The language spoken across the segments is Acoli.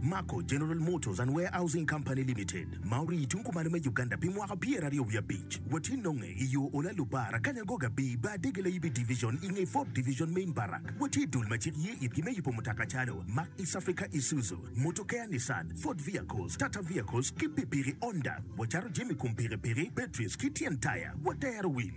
Mako General Motors and Warehousing Company Limited ma orii tung kumalo me Uganda pi mwaka pyeraryo wiye abic watye nonge i yo Ola Lubar Akanya Goga Bii Bar Dege Layibi Division i nge Ford Division Main Barrack watye dul ma cik ye itgi me yubo mutoka calo Mack East Africa Isuzu Motokea Nissan Ford Vehicles Tata Vehicles ki pikipiki Honda wacato jami kom pikipiki batteries ki tyen taya watero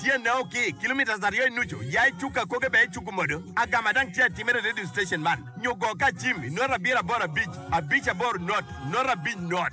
Tyenne o ki kilometres aryo i nucu, ya i cuk akoge bene icuk modo agama dang tye atimere i radio station man nyo go ka cim i not abiro aboro abic abic aboro not not abic not.